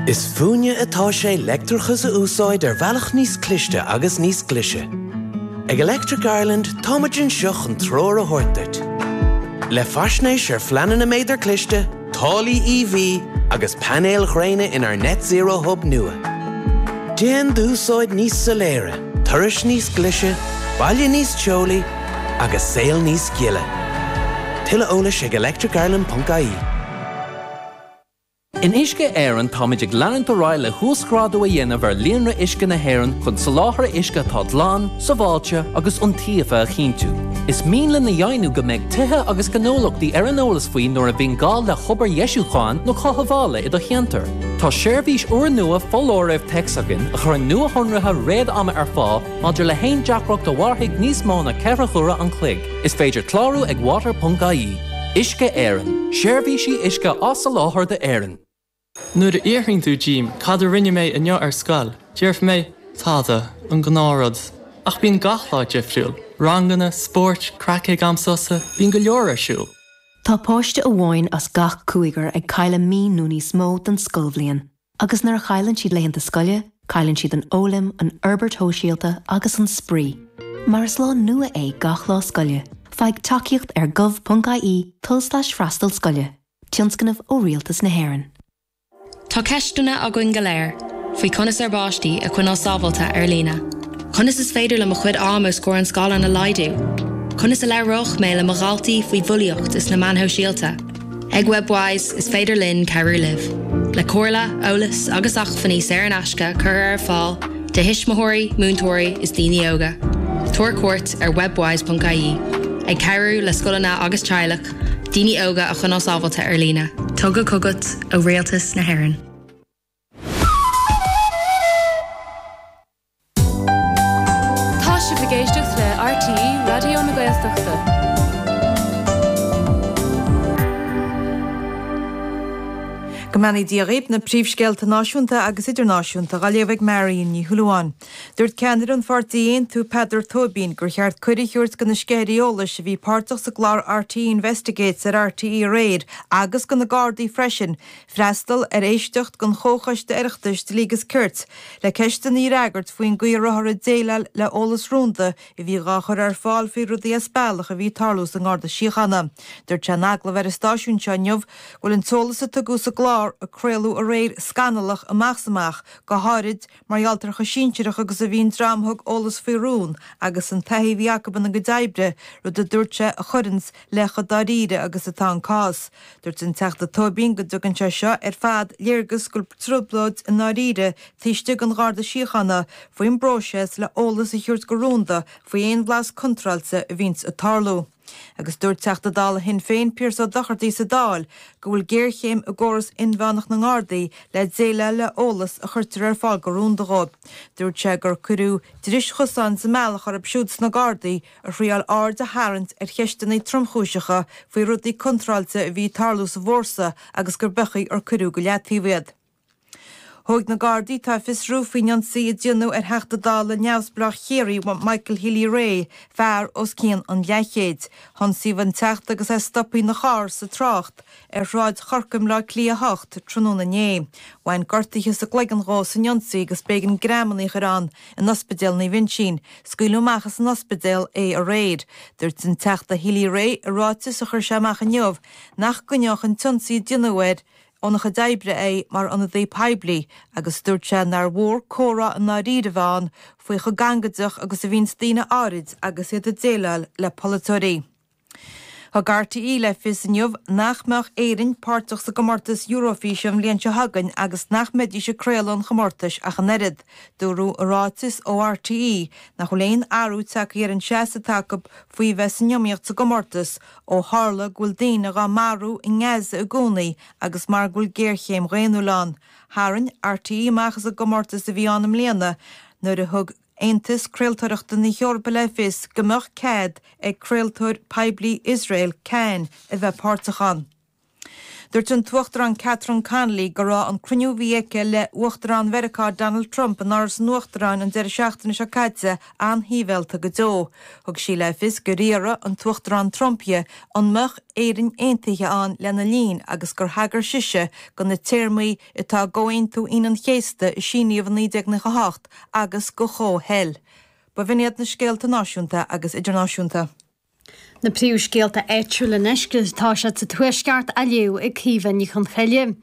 Is fúinne atá sé leictreachas a úsáid ar bhealach níos cliste agus níos glise. Ag Electric Ireland táimid anseo chun treoir a thabhairt duit. Le faisnéis ar phleananna méadar cliste, táillí EV agus painéil ghréine inár Net Zero Hub nua. Déan d'úsáid níos soiléire, turais níos glise, baile níos teolaí agus saol níos gile. Tuilleadh eolais ag electricireland.ie. In Uisce Éireann táimid ag leanúint ar aghaidh le huasghrádú a dhéanamh ar líonra uisce na hÉireann chun soláthar uisce atá glan, sábháilte agus iontaofa a chinntiú. Is mian linn a dheimhniú go mbeidh tithe agus gnólachtaí ar an eolas faoi nuair a bhíonn gá le hobair dheisiúcháin nó chothabhála i do cheantar. Tá seirbhís úrnua foláirimh téacs againn a chuireann nuashonruithe réad-ama ar fáil maidir le haon deacracht a mhairfidh níos mó ná ceithre huaire an chloig. Is féidir clárú ag water.ie. Uisce Éireann, Seirbhísí uisce á soláthar d'Éirinn. Nuair a fhiafraíonn tú díom cad a rinne mé inniu ar scoil, déarfaidh mé, tada, an gnáth rud. Ach bíonn gach lá difriúil, ranganna, spóirt, craic ag am sosa, bíonn go leor ar siúl. Tá páiste amháin as gach cúigear ag cailleadh mí nó níos mó den scoilbhliain Agus nuair a chailleann siad laethanta scoile, cailleann siad an fhoghlaim, an fhorbairt shóisialta agus an spraoi. Mar is lá nua é gach lá scoile, faigh tacaíocht ar gov.ie, tulslais freastal scoile, tionscnamh ó Rialtas na hÉireann. Tá ceisteanna againn go léir faoi conas ár bpáistí a choinneáil sábháilte ar líne. Conas is féidir liom mo chuid ama os comhair an scáileáin a laghdú? Conas a labhródh mé le mo dhaltaí faoi bhulaíocht is na meáin shóisialta? Ag Webwise, is féidir linn cabhrú libh le comhairle, eolas agus acmhainní saor in aisce a chur ar fáil do thuismitheoirí, múinteoirí is daoine óga. Tabhair cuairt ar webwise.ie, ag cabhrú le scoileanna agus teaghlaigh daoine óga a choinneáil sábháilte ar líne. Tugtha chugat ó Rialtas na hÉireann. Tá sibh ag éisteacht le RTÉ Raidió na Gaeltachta. Go mbeannaí Dia dhaoibh, na príomhscéalta náisiúnta agus idirnáisiúnta dhá léamh ag Marion Ní Shúilleabháin. Dúirt ceannaire an pháirtí Aontú, Peadar Tóibín, gur cheart cuireadh a thabhairt do na sceithirí eolais a bhí páirteach sa gclár RTÉ Investigates ar RTÉ aréir agus do na Gardaí freisin, Freastal ar éisteacht den Chomhchoiste Oireachtais Dlí agus Cirt le ceisteanna a fhreagairt faoin gcaoi a rabhthar ag déileáil le heolas rúnda a bhí dhá chur ar fáil faoi rudaí as bealach a bhí ag tarlú sa nGarda Síochána. Dúirt sé in agallamh ar an stáisiún seo inniu go bhfuil an t-eolas a tugadh sa gclár a craoladh aréir scannalach amach is amach, go háirid Mar gheall ar chomh sinsearach agus a bhí an dream a thug eolas faoi rún agus an taithí a bhí acu ina gcuid oibre, rud a dúirt sé a chuireanns le chomh dáiríre agus atá an cás. Dúirt an Teachta Tóibín go dtugann sé seo ar fad léargas go bhfuil trioblóid i ndáiríre taobh istigh dhon Gharda Síochána faoin bpróiseas le eolas a thabhairt go rúnda faoi aon bhlas contráilte a bhíonns ag tarlú. Agus dúirt Teachta Dála Shinn Féin, Pearse Ó Dochartaigh, sa Dáil go bhfuil géarchéim i gcóras inmheánach na nGardaí le déileáil le eolas a chuirtear ar fáil go rúnda dhó. Dúirt sé gur cuireadh dris chosáin sa mbealach orthu siúd sna Gardaí a thriáil aird a tharraingt ar cheisteanna tromchúiseacha faoi rudaí contráilte a bhí ag tarlú sa bhfórsa agus gur beag nár cuireadh go leataobh iad. Thóg na Gardaí tá ag fiosrú faoin ionsaí a déanadh ar Theachta Dála neamhspleách Chiarraí Michael Healy-Rae, fear os cionn an leathchéid. Hionsaíodh an Teachta agus é stoptha ina charr sa trácht ar Shráid Chorcaigh i mBleá Cliath 8 tráthnóna inné. Bhain gortaithe sa gcloigeann dhó san ionsaí agus b'éigean greamanna a chur ann in Ospidéal Naomh Uinsín. Scaoileadh amach as an ospidéal é aréir. Dúirt an Teachta Healy-Rae i ráiteas a chuir sé amach inniu nach gcoinneodh an t-ionsaí a déanadh air óna chuid oibre é mar ionadaí poiblí agus dúirt sé nár mhór comhrá i ndáiríre a bheith ann faoi chomh gangaideach agus a bhíonns daoine áirid agus iad ag déileáil le polaiteoirí. Thug RTÉ le fios inniu nach mbeadh Éirinn páirteach sa gcomórtas Eurofíse an bhliain seo chugainn agus nach mbeidís ag craoladh an chomórtais ach an oiread. Dúradh i ráiteas ó RTÉ nach bhfuil aon athrú tagtha ar an seasamh atá acu faoi bheith san iomaíocht sa gcomórtas, Ó tharla go bhfuil daoine dhá marú i nGaza i gcónaí agus mar go bhfuil géarchéim dhaonnúil ann, tharraing RTÉ amach as an gcomórtas a bhí ann i mbliana nuair a thug Aontas Craoltóireachta na hEorpa le fios go mbeadh cead ag craoltóir poiblí Iosrael, Kan, a bheith páirteach ann. Dúirt an tUachtarán Catherine Connolly go raibh an cruinniú a bhí aici le hUachtarán Mheiriceá Donald Trump in Áras an Uachtaráin an deireadh seachtaine seo caite an-shiabhialta go deo. Thug sí le fios gur fhiafraigh an tUachtarán Trump dhi an mbeadh Éirinn Aontaithe ann lena linn agus gur thagair sise go na téarmaí atá i gComhaontú Aoine an Chéasta a síníodh i 1998 agus go Chomhshaol. B'in iad na scéalta náisiúnta agus idirnáisiúnta. Na príomhscéalta áitiúil anois agus tá siad sa Tuaisceart á léamh ag Caoimhe Ní Chonchoille.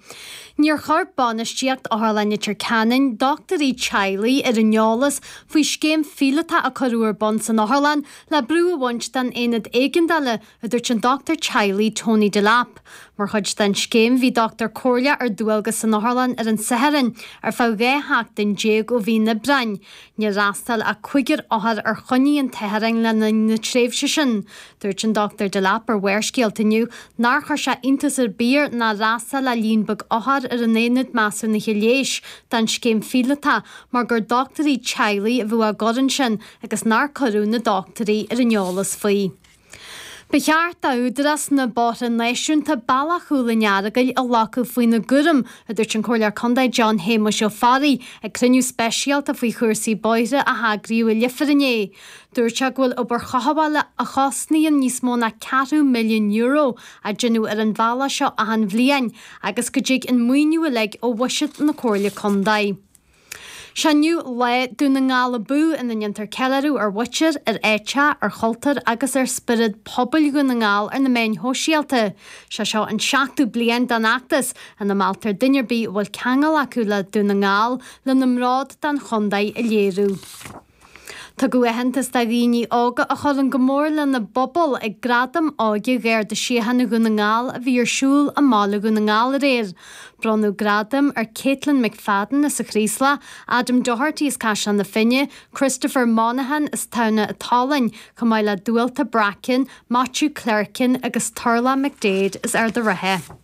Níor chuir bainistíocht Otharlann Leitir Ceanainn dochtúirí teaghlaigh ar an eolas faoi scéim phíolótach a cuireadh ar bun san otharlann le brú a bhaint den aonad éigeandála, a dúirt an dochtúir teaghlaigh Tony Delap. Mar chuid den scéim bhí dochtúir comhairle ar dualgas san otharlann ar an Satharn ar feadh dhá sheachtain déag ó mhí an Aibreáin. Níor fhreastail ach cúigear othar ar choinní an tSathairn le linn na tréimhse sin. Dúirt an Dr Delap ar Mhórscéalta inniu nár chuir sé iontas ar bith air nár fhreastail ach líon beag othar ar an Aonad Measúnaithe Leighis don scéim phíolótach mar gur dochtúirí teaghlaigh a bhí á gcur ansin agus nár cuireadh na dochtúirí ar an eolas faoi. Ba cheart d'Údarás na mBóithre Náisiúnta bealach Chúil an Earagail a ghlacadh faoina gcúram, a dúirt an Comhairleoir Contae John Shéamuis Ó Fearraigh ag cruinniú speisialta faoi chúrsaí bóithre a eagraíodh i Leifear inné. Dúirt sé go bhfuil obair chothabhála a chosnaíonn níos mó ná ceathrú milliún euro á déanamh ar an bhealach seo achan bhliain agus go dtig an maoiniú uilig ó bhuiséad na Comhairle Contae. Sé inniu lá Dún na nGall Abú ina ndéantar ceiliúradh ar mhuintir, ar áiteacha, ar chultúr agus ar spiorad pobail Dhún na nGall ar na meáin shóisialta. Sé seo an seachtú bliain den fheachtas, ina mealltar duine ar bith a bhfuil ceangal acu le Dún na nGall lena mbród don chontae a léiriú. Tugadh aitheantas do dhaoine óga a chuireann go mór lena bpobal ag Gradaim Óige Gharda Síochána Dhún na nGall a bhí ar siúl i mBaile Dhún na nGall aréir. Bronnadh gradaim ar Caitlin McFadden as an Chraoslach, Adam Doherty as Caisleán na Finne, Christopher Monahan as Tamhnach an tSalainn, chomh maith le Dualta Bracken, Maitiú Clerkin agus Turlough McDaid as Ard an Rátha.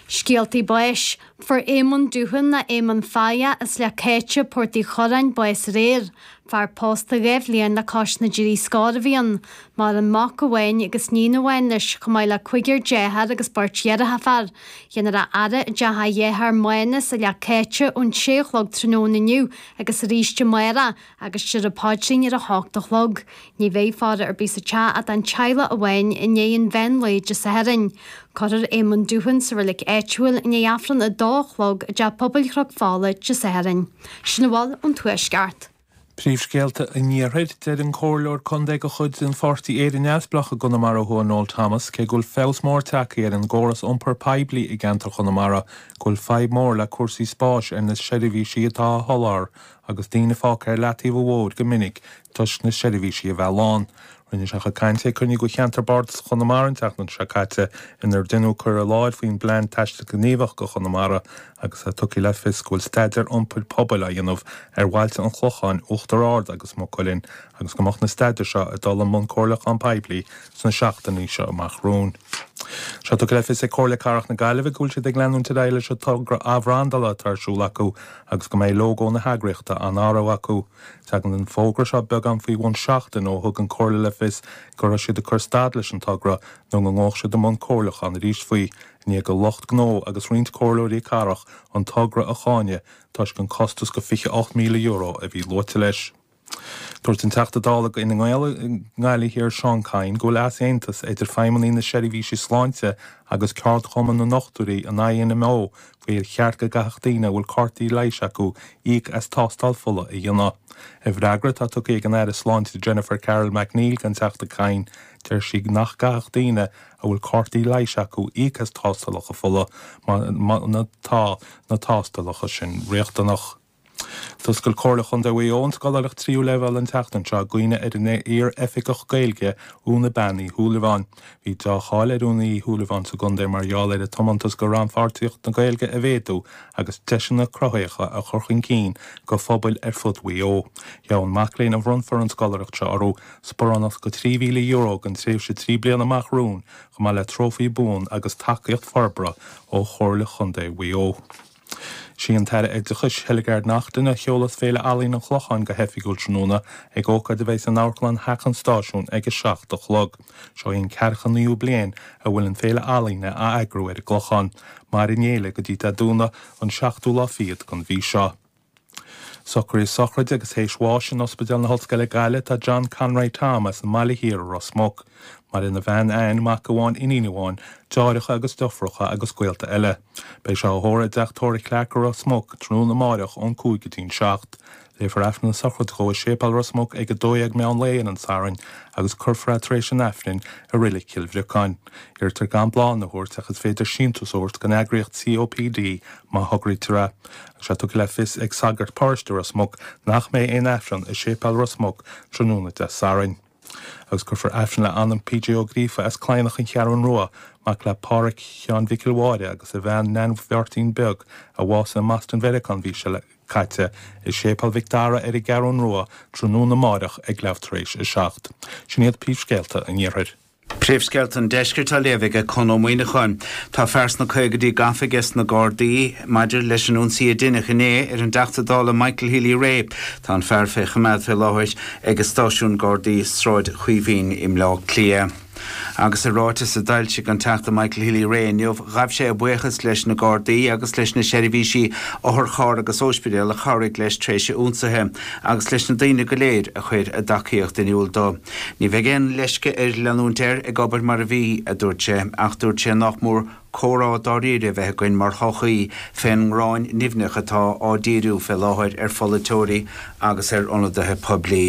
Scéaltaí Báis, Fuair Éamonn Doohan nó Éamonn Faya as Sliabh an Chéite, Port Uí Churráin bás aréir. Fear pósta dhá bhliain le cois na dtrí scór a bhí ann, maireann mac amháin agus níon amháin leis, chomh maith le cúigear deartháir agus beirt dheirfiúr. Fíor, déanfar a fhaire i dteach a dhearthár Mánus i Sliabh an Chéite ón sé a chlog tráthnóna inniu agus arís amárach, Agus déarfar an Paidrín ar a h-ocht a chlog. Ní bheidh faire ar bith sa teach ach an teaghlach amháin i ndiaidh an mheán lae Dé Sathairn. Curthar Éamonn Doohan sa reilig áitiúil i ndiaidh Aifreann a dó a chlog i dTeach Pobail Chnoc Fola Dé Sathairn. Sin a bhfuil ón Tuaisceart. Príomhscéalta an Iarthair. Deir an Comhairleoir Contae de chuid an Pháirtí Éire Neamhspleách i gConamara Thuaidh Noel Thomas cé go bhfuil feabhas mór tagtha ar an gcóras iompar poiblí i gceantar Chonamara go bhfuil fadhb mhór le cúrsaí spáis ar na seirbhísí atá á sholáthar Agus daoine fágtha ar leataobh an bhóthair go minic toisc na seirbhísí a bheith lán, rinne sé a chuid cainte ag cruinniú de cheantar Bardasach Chonamara an tseachtain seo caite inar deineadh cur i láthair faoin bPlean Taistil Gníomhach do Chonamara agus ar tugadh le fios go bhfuil staidéar iompair pobail á dhéanamh ar bhailte an Chlocháin, Uachtar Ard agus Maigh Cuilinn agus go mbeadh na staidéir seo ag dul i mbun comhairliúchán poiblí sna seachtainí seo amach romhainn. Tá sé tugtha le fios ag Comhairle Cathrach na Gaillimhe go bhfuil siad ag leanúint ar aghaidh leis an togra athbhrandála atá ar siúl acu agus go mbeidh lógó na heagraíochta á n-athrú acu. Tagann an fógra seo beagán faoi bhun seachtain ó thug an Comhairle le fios go raibh siad ag cur stad leis an togra nó go ngabhadh siad i mbun comhairliúcháin arís faoi, i ndiaidh do lucht gnó agus roinnt comhairleoirí cathrach an togra a cháineadh toisc an costas de €28,000 a bhí luaite leis. Dúirt an Teachta Dála d'Fhine Gael i nGaillimh Thiar Seán Kyne go bhfuil easaontas idir feidhmeannaigh na seirbhísí sláinte agus ceardchumann na ndochtúirí an INMO faoi ar cheart go gcaithfeadh daoine a bhfuil cártaí leighis acu íoc as tástáil fola a dhéanamh. I bhfreagra atá tugtha ag an Aire Sláinte Jennifer Carroll MacNeill don Teachta Kyne deir sí nach gcaithfeadh daoine a bhfuil cártaí leighis acu íoc as tástálacha fola má tá na tástálacha sin riachtanach. D'oscail Comhairle Chontae Mhaigh Eo an scoláireacht tríú leibhéal an tseachtain seo i gcuimhne ar an iar-Oifigeach Gaeilge, Úna Bean Uí Shúilleabháin. Bhí deá-cháil ar Úna Uí Shúilleabháin sa gcontae mar gheall ar a tiomantas do rannpháirtíocht na Gaeilge a mhéadú agus deiseanna cruthaitheacha a chur chun cinn do phobail ar fud Mhaigh Eo. Gheobhaidh an mac léinn a bhronnfar an scoláireacht seo orthu sparánacht de €3,000 don tréimhse trí bliana amach romhainn chomh maith le trófaí buan agus tacaíocht forbartha ó Chomhairle Chontae Mhaigh Eo. Sí an tAire Oideachais, Hildegarde Naughton, a sheolfas Féile Ealaíon an Chlocháin go hoifigiúil tráthnóna, ag ócáid a bheidh san Amharclann Theach an Stáisiúin ag a seacht a chlog. Seo í an ceathracha naoú bliain a bhfuil an Féile Ealaíne á eagrú ar an gClochán. Mairfidh an Fhéile go dtí Dé Domhnaigh, an seachtú lá fichead den mhí seo. Socruithe sochraide agus théis bháis in Ospidéal na hOllscoile Gaillimh tá John Conroy Tom as an mBaile Thiar i Ros Muc. Maireann a bhean Anne, mac amháin, iníon amháin, deartháireacha agus deirfiúracha agus gaolta eile. Beidh sé á thórramh i dTeach Tórraimh Clarke i Ros Muc tráthnóna amáireach ón cúig go dtí'n seacht. Léifear Aifreann na Sochraide dhó i Séipéal Ros Muc ag 12 meán lae ar an Satharn agus cuirfear é tar éis an Aifrinn i Reilig Chill Bhriocáin. Iarrtar gan bláthanna a thabhairt ach is féidir síntiús a thabhairt don eagraíocht COPD má thograítear é. Tá sé tugtha le fios ag sagart paróiste Ros Muc nach mbeidh aon aifreann i Séipéal Ros Muc tráthnóna Dé Sathairn. Agus cuirfear aifreann le anam PJ Ó Gríofa as Cladhnach an Cheathrúin Rua, mac le Páraic Sheáin Mhicil Mháire agus a bhean Neain Bheairtín Beag, a bhásaigh i mBoston Mheiriceá an mhí seo caite, i Séipéal Mhic Dara ar an gCeathrún Rua tráthnóna amáireach ag leathuair tar éis a seacht. Sin iad príomhscéalta an iarthair. Príomhscéalta an Deiscirt á léamh aige Conn Ó Muíneacháin Tá fear sna caogaidí gafa aiges na Gardaí maidir leis an ionsaí a deineadh inné ar an dTeachta Dála Michael Healy Rae. Tá an fear fé choimeád fé láthair aige stáisiún Gardaí Sráid Chaoimhín i mBleá Cliath. Agus i ráiteas a d'fhoilsigh an Teachta Michael Healy Rae inniu, ghabh sé a bhuíochas leis na Gardaí agus leis na seirbhísí otharcharr agus óispidéal a chabhraigh leis tréis a ionsaithe, agus leis na daoine go léir a chuir a dtacaíocht in iúl dó. Ní bheidh aon leisce air leanúint air ag obair mar a bhí, a dúirt sé, ach dúirt sé nach mór comhrá dáiríre a bheith againn mar shochaí fén ngráin nimhneach atá á díriú fé láthair ar pholaiteoirí agus ar ionadaithe poiblí.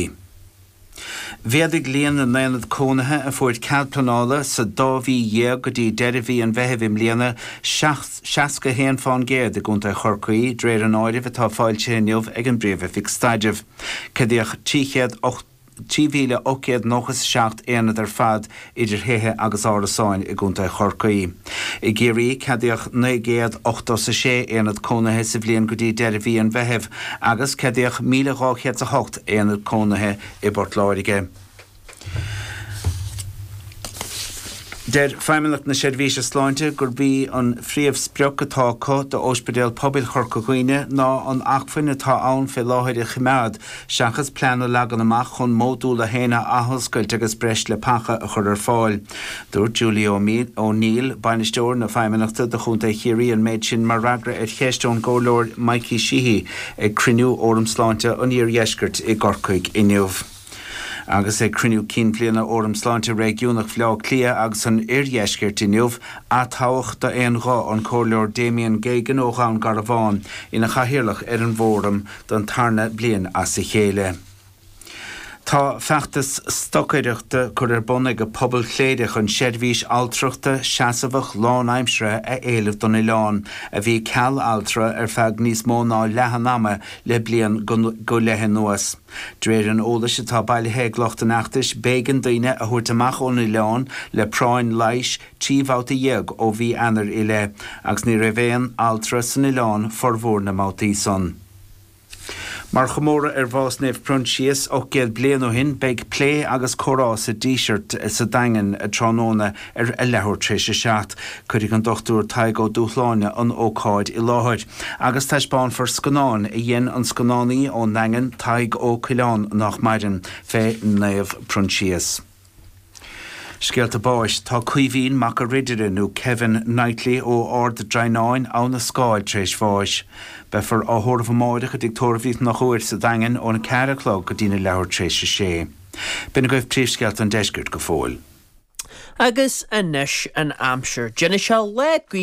Mhéadaigh líon na n-aonad cónaithe a fuair cead pleanála sa dá mhí dhéag go dtí deireadh mhí an Mheithimh i mbliana, 61 fán gcéad i gContae Chorcaí, dréir an áirimh atá foilsithe inniu ag an bPríomh-Oifig Staidrimh. Ceadaíodh 380. 3,897 aonad ar fad idir thithe agus árasáin i gContae Chorcaí. I gCiarraí ceadaíodh 986 aonad cónaithe sa bhliain go dtí deireadh mhí an Mheithimh agus ceadaíodh 1,208 aonad cónaithe i bPort Láirge. Deir Feidhmeannacht na Seirbhíse Sláinte gurb í an phríomhsprioc atá acu d'Óispidéal Pobail Chorca Dhuibhne ná an acmhainn atá ann fé láthair a choimeád Seachas plean a leagan amach chun Módúl 1 a athoscailt agus breis leapacha a chur ar fáil, dúirt Julie O'Neill, Bainisteoir na Feidhmeannachta do Chontae Chiarraí an méid sin mar fhreagra ar cheist ón gComhairleoir Mikey Sheehy ag cruinniú Fhóram Sláinte an Iardheiscirt i gCorcaigh inniu agus ag cruinniú cinn bhliana Fhóram Sláinte Réigiúnach Bhaile Átha Cliath agus an Oirdheiscirt inniu atoghadh d'aon ghuth an Comhairleoir Damien Geoghegan ó Dhún Garbhán ina Chathaoirleach ar an bhFóram don tarna bliain as a chéile. Tá feachtas stocaireachta curtha ar bun ag pobal Chléire chun seirbhís altrachta seasamhach lánaimseartha a éileamh don oileán, a bhí ceal altra ar feadh níos mó ná leath an ama le bliain go leith anuas. De réir an eolais atá bailithe ag lucht an fheachtais, b'éigean daoine a thabhairt amach ón oileán le práinn leighis, trí bhabhta dhéag ó mhí Eanair i leith agus ní raibh aon altra san oileán formhór na mbabhtaí san. Mar chomóradh ar bhás Naomh Proinsias 800 bliain ó shin beidh plé agus comhrá sa Díseart sa Daingean tráthnóna ar a leathuair tréis a seacht. Cuirfidh an Dr. Tadhg Ó Dúshláine an ócáid i láthair agus taispeánfar scannán a dhein an scannánaí ón nDaingean, Tadhg Ó Coileáin, nách maireann, fé Naomh Proinsias. Scéalta báis, Tá Caoimhín Mac an Ridire nó Kevin Knightly ó Ard Draighneáin, Abha na Scáil tar éis bháis. Beifear á thórramh amáireach i dTigh Tórraimh Uí Chonchúir sa Daingean óna ceathair a chlog go dtína leathuair tar éis a sé. B'in agaibh príomhscéalta an Deiscirt go fóill. Agus anois an aimsir. D'inis a leath gaoth.